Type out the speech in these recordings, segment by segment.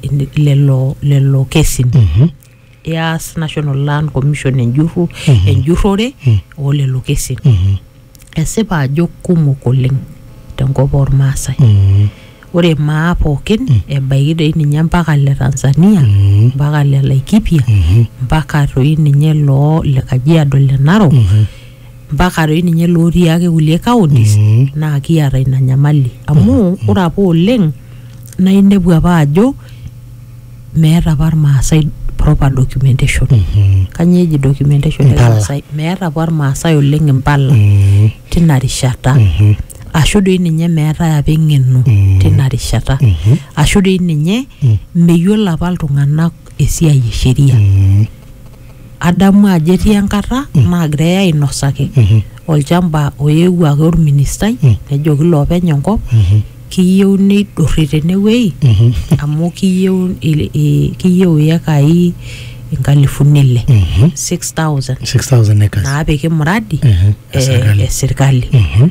in- lelo lelo kesin Mhm. eas national land commission enjurru enjurrore oo lelo kesin Mhm. esipa ajo kumok oleng tenkop ormaasai Mhm. ore maa pookin ebaiki doi ninye mpaka le tanzania Mhm. mpaka le laikipia Mhm. mpaka toi ninye loo le kajiado le narok Mhm. mpaka doi ninye lootii ake kulie counties Mm. naa kiata ina nyamali amu ore apa oleng naa inepu apa ajo meeta apa irmaasai proper documentation Mhm. kanyoo eji documentation Impala. irmaasai meeta apa irmaasai oleng impala Mm. tina rishata Mhm. ashu doi ninye meetae apa eng'eno Mm. tina rishata Mhm. ashu doi ninye Mm. meyiolo apa iltung'anak esiai e sheria Mm. adamu ajo etii enkata naagirae ainosaki olchamba oyewuo ake orministai Mm. nejoki loopeny enkop Mhm. kiyieu neidurri tenewuei Mhm. amu kiyieu il- i- kiyieu iyekai inkalifuni ile Mhm. 6000 6000 acres. naapiki muradi Mhm. e- Esirkali. esirkali Mhm.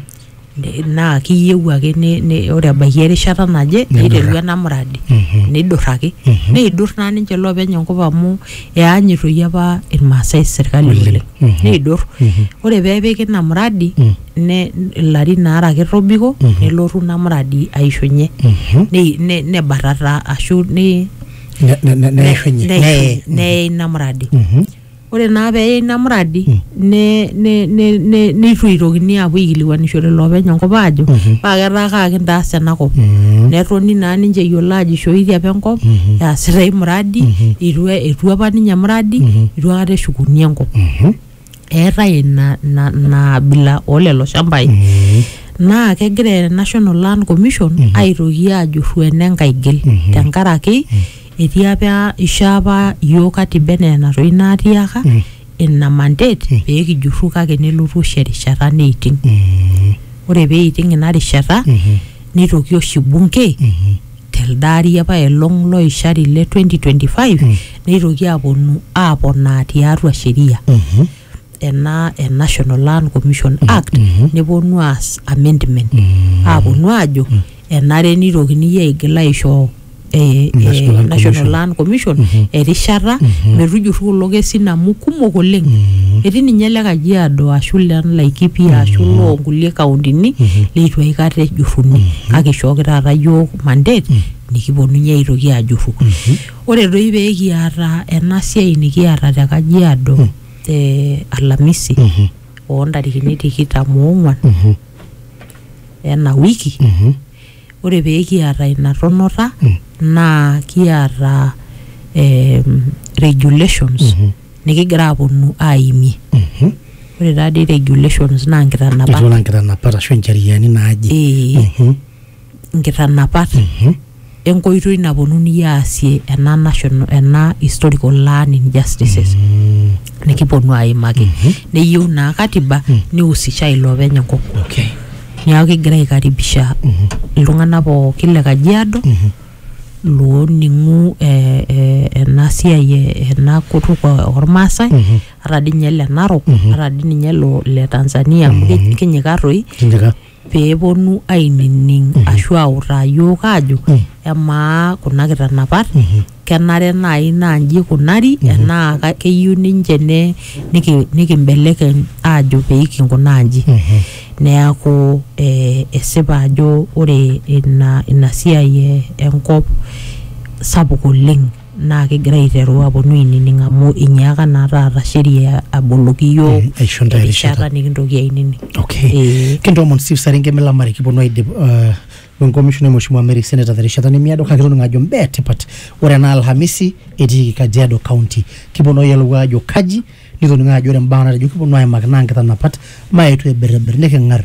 ne- naa kiyieu ake ne- ne- ore ebaiki erishata naje Nidurra. niteru ena muradi Mhm. nidurraki Mhm. neidur naa ninche loopeny enkop amu eanyitoyie apa irmaasai sirkali Oleng. oleng Mhm. neidur Mhm. ore peepiki ina muradi Mm. ne ilarin aare ake tobiko Mhm. nelotu ina muradi aishunye Mhm. ne- ne- nebatata ashu ne- Ne- ne- ne- ne- neishunye. neishunye- Neye. neye ina muradi Mhm. Ore naa pee eyai ina muradi ne- ne- ne- ne- neitu eitokini aapuo aikilikuanishore loopeny enkop aajo paa ketaa kaa kintaas ena kop. Netoni naa ninche eyiolo aajo eishooitie apa enkop easita ai muradi eitu etu apa ninye emuradi eitu aikata eshukuni enkop. Eetae ina ina ina abila oo lelo shambai. Naa kegira National Land Commission aitoki aajurru ene nkaigil tenkaraki etii apa ishoo apa iyiook katiba enaa enatoino atiaka Mm. ina mandate Mm. pee kijurru kake nelotu oshi erishata neiting Mm. ore pee eiting ina rishata Mhm. neitoki oshi bunge Mhm. telde ari apa elong loishari le 2025 Mm. neitoki aaponu aaponaa tiatua sheria Mhm. ena e National Land Commission Act neponu aas amendment aaponu aajo enare nitokini iyie aigil aisho eh, eh, National Land National Commission. Land Commission erishata metujurru kulo kesin amu kumok oleng etii ninye le Kajiado ashu le Laikipia ashu loo nkulie kauntini leitu aikata ejurruni kake ishooki taata iyiook mandate nikiponunye aitoki ajurru ore doi pee kiata ena siai nikiata te Kajiado te Alhamisi Mhm. oo ntarikini tikitam oong'wan Mhm. ena wiki Mhm. ore pee kiata ina tonota Mm. naa kiata em, regulations Mhm. nikigira aaponu aimie Mhm. ore taadii regulations naa nkitanapat Etiu enaa nkitanapat ashu incheriani naaje. ee Mhm. nkitanapat enkoitoi naponunui aasie ena national ena historical learning justices nikiponu aimaki neyieu naa katiba nihusisha ilopeny enkop okay niaku kigira aikaribisha iltung'anak pookin le kajiado looning'u eh, eh, ena siai eh, ena kutuk o- ormaasai ata dii ninye le narok ata dii ninye lo le tanzania amu ki- kinyikaa toi kinyika pee eponu ainining mm -hmm. ashu autaa yiok aajo mm -hmm. emaa kuna kitanapat mm -hmm. kenare naaji naa nji ikunari mm -hmm. enaa keyieu ninche ne nikimbelekeny niki aajo pee kinkunaa nji mm -hmm. neaku eh, esipa ajo ore ina, ina siai enkop sapuk oleng naa kigira aiteru aponu ainining amu inyiaka naa taata sheria aboloki iyiook Mm, aisho ntae erishata. erishata nikintoki ainining. Okay. Eh. Kintoomon Steve Saringe milamari kiponu aidip uh, wenkomishonai Mheshimiwa Mary Senator terishata nemiado kake toningo ajo mbaa etipat ore ena Alhamisi etiiki Kajiado County kiponu ayiolou ajo kaji nitoningo ajo ore mbaa natejo kiponu aimaki naa nkitanapat maetu aibirribir niking'ar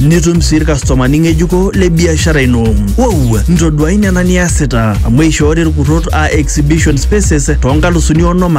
nitum sii ilkastomani ng'ejuko le biashara ino. Wow, ntoduai nena niasita amu eishoori ilkurrot aa exhibition spaces too nkalusuni onom ake